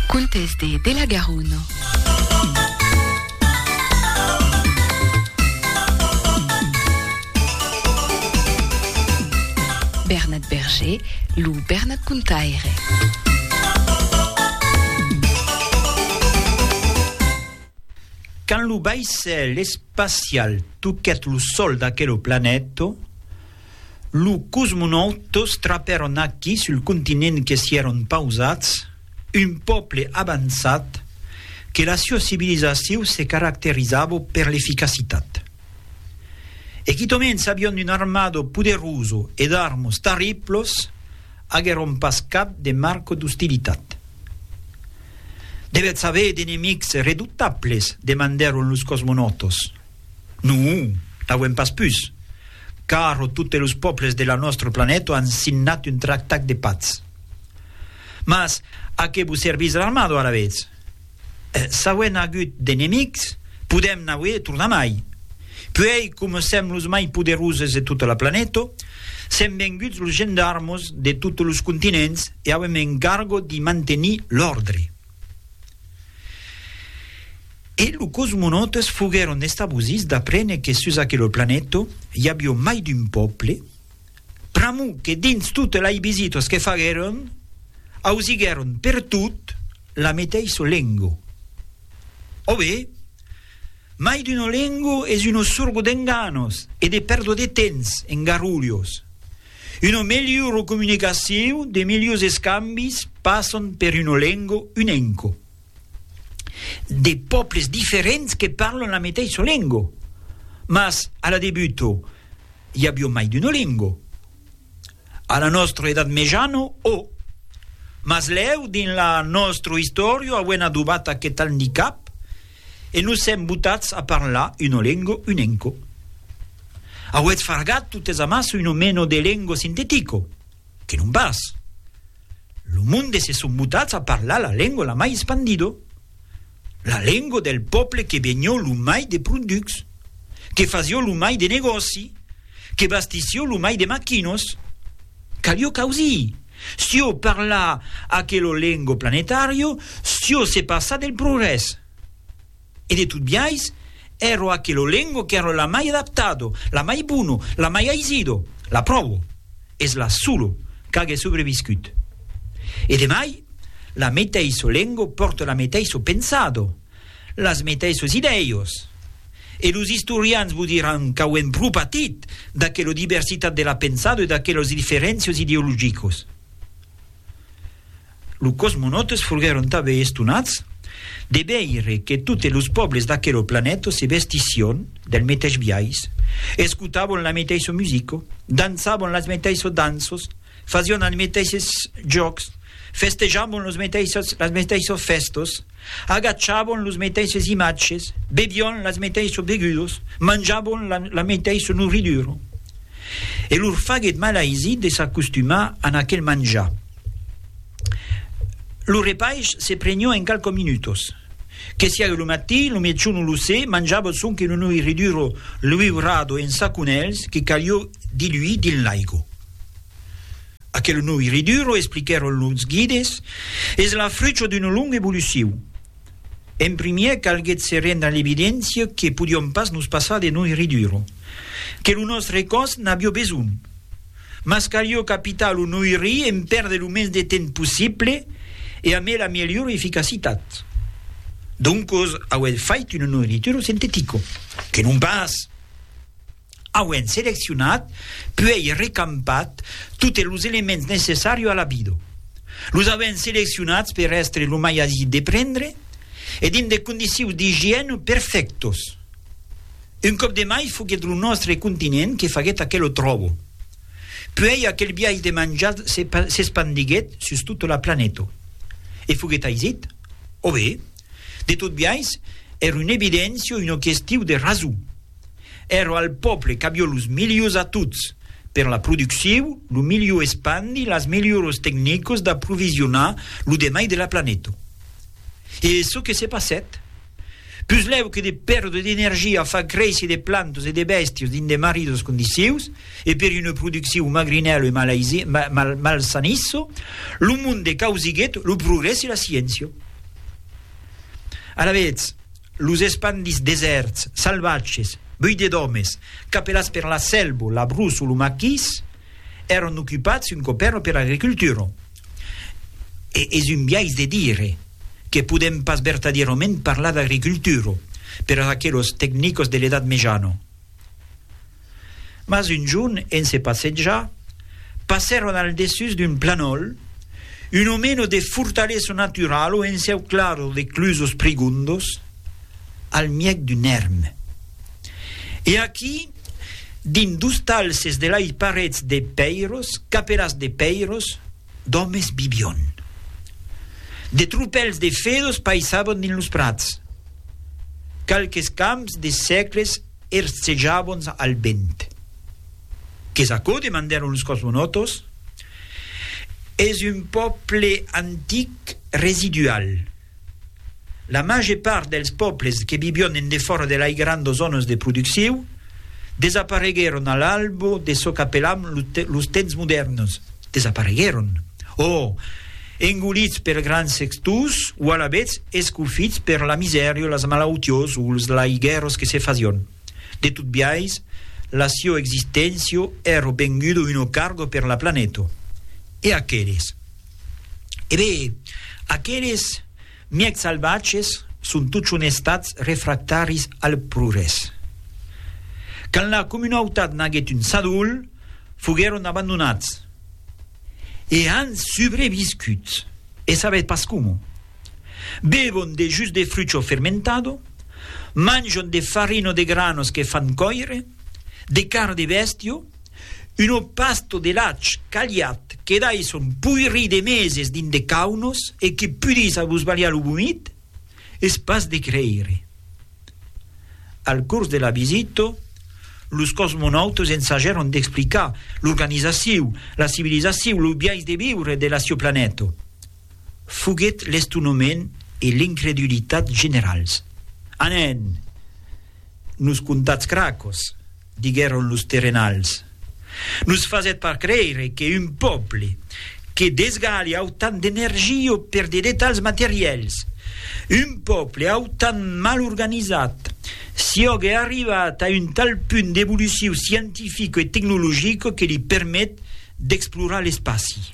Contes de de la Garona. Bernat Berger, lo Bernat Contaire. Quand lo vaissèl espacial toquèt lo sol d'aquelo planèto, Lo cosmonaut tos trapèron aquí sul continent que s'i èron pausats, un pòble avançat que la siua civilizaciu se caracterizavo per l'eficacitat. E quitament s'avion un armado poderoso e d'armos tarriplos, aguèron pas cap de marco d'ostilitat. Devètz aver d'enemics redoutables? demandèron los cosmonautos. Non, n'auem pas pus, caro totes los pòbles de la nòstre planèto an signat un tractat de patz. Mas a qué vos servís l'armado alavetz? S'auem agut d'enemics, podèm n'auer tornamai. Puèi, coma sèm los mai poderoses de tota la planèto, sèm venguts los gendarmos de totes los continents e auem encargo d'i mantenir l'òrdre. E lo cosmonautes foguèron estabosits d'aprene que sus aquelo planeta i avió mai d'un pòble, pr'amor que dins totes lai visitas que faguèron ausiguèron pertot la meteissa lenga. Ò be, mai d'una lenga es una sorga d'enganos e de pèrda de temps en garrulhos, Una melhora comunicacion, de melhors escambis passan per una lenga unenca, de pòbles diferents que parlan la meteissa lenga, mas a la debuta i aviá mai d'una lenga, a la nòstra Edat Mejana o. Mas lèu dins la nòstra istòria auem adobat aqueth andicap, E nos sèm botats a parlar uno lengo unenco. Auetz fargat totes amassa uno meno de lengo sintetico, que non pas. Lo monde se son botats a parlar la lengo la mai espandido, la lengo del pòple que venió lo mai de pronducs, que fasió lo mai de negòci, que bastissió lo mai de maquinos. Calió causir! Sciò parla aquelo lengo planetario, sciò se passa del progrès. E de tot biais, ero aquelo lengo qu'ero la mai adaptado, la mai bono, la mai aisido, la pròvo, es la solo qu'age sobreviscut. E de mai, la meteisho lengo pòrte la meteisho pensado, Las meteissos idèios. E los istorians vos diràn qu'auem pro patit d'aquela diversitat de la pensada e d'aquelas diferéncias ideologicas. Los cosmonautes foguèron tanben estonats de veire que totes los pòbles d'aquela planeta se vestissián del meteis biais, escotavan la meteissa musica, dançavan las meteissas danças, Fasión als meteisses jòcs, festejabon los meteisses las meteisses fèstas, agachabon los meteisses imatges, bebión las meteisses begudas, manjabon la, la meteissa nourridura. E lor faguèt malaisit de s'acostumar a aquel manjar. Lo repaish se prenió en qualques minutas. Que siague lo matin, lo mejor non lo sé, manjava sonque una nourridura liurada en saconèls que calió diluir dins l'aiga. Aquel nouiriduro, expliquèron los guides, es la frucha d'una longa evolucion. En primièr calguèt se rendre a l'evidéncia que podiom pas nos passar de nouiriduro, que lo nòstre còs n'avió besonh, mas calió capitar lo nouirir en pèrder lo mens de temps possible e amé la melhor eficacitat. Doncos auèt fait un nouirituro sintetico, que non pas! Auent seleccionat, puèi recampat totes los elements necessari a la vida. Los auent seleccionats per èstre lo mai aisit de prendre e dins de condicions d'igièna perfèctas. Un còp de mai foguèt lo nòstre continent que faguèt aquela tròba. Puèi aquel biais de manjar s'espandiguèt sus tota la planeta. E foguèt aisit? Ò be, de tot biais, èra una evidéncia, una question de rason. Ero al pòble qu'avió los milius a tots per la producciu, lo miliu espandi las milioros tecnicos d'aprovisionar lo demai de la planeta. E çò que se passèt? Puslèu que de perdre d'energia a far créisser de plantas e de bèstias dins de marridas condicius e per una producciu magrinèla e malsanissa, lo monde causiguèt lo progrès e la sciéncia. Alavetz, Los espandits desèrts, salvatges, buidés d'òmes, capelats per la selva, la brusa o lo maquís, èran ocupats un còp èra per l'agricultura. E es un biais de dire que podèm pas vertadièrament parlar d'agricultura per aquelos tecnicos de l'Edat Mejana. Mas un jorn, en se passejar, passèron al dessús d'un planòl, un omeno de fortalesa naturala o enceuclada de clusos prigondos, al mièg d'un èrm. E aquí, dins dos talses de lai parets de pèiros, capelas de pèiros, d'òmes vivion. De tropèls de fedos paissavan dins los prats. Qualques camps de sècles Ers cejabons al vent. Qu'es aquò? demandèron los cosmonòtos. Es un pòble antic residual. La màger part dels pòbles que vivión en defòra de lai grandos zònas de producciu desapareguèron a l'albo de çò qu'apelam los temps modèrns. Desapareguèron, o engolits per grans sextors, o alavetz escofits per la misèria, las malautiós o los laiguèros que se fasión. De tot biais, la sió existéncia èra venguda una carga per la planeta. E aqueles? E ben, aqueles, Mièg salvatges son totjorn estats refractaris al progrès. Quand la comunautat n'aguèt un sadol, foguèron abandonats. E an subreviscut, e sabètz pas coma. Bevon de jus de frucho fermentado, manjon de farina de granos que fan còire, de carn de bèstia, Un opasto de lach caliat que dai son poirí de meses dins de caunos e que pudís abusbalhar lo vomit? Es pas de creire. Al cors de la visita, los cosmonautas ensajèron d'explicar l'organizaciu, la civilizaciu, lo biais de viure de la sieu planeta. Foguèt l'estonament e l'incredulitat generals. Anen! Nos contatz cracos! diguèron los terrenals, nos fasèt pas creire que un pòble que desgalha autant d'energia o per de detalhs materièls, un pòble autant mal organizat, siògue arrivat a un tal punt d'evoluciu scientifica e tecnologica que li permet d'explorar l'espaci.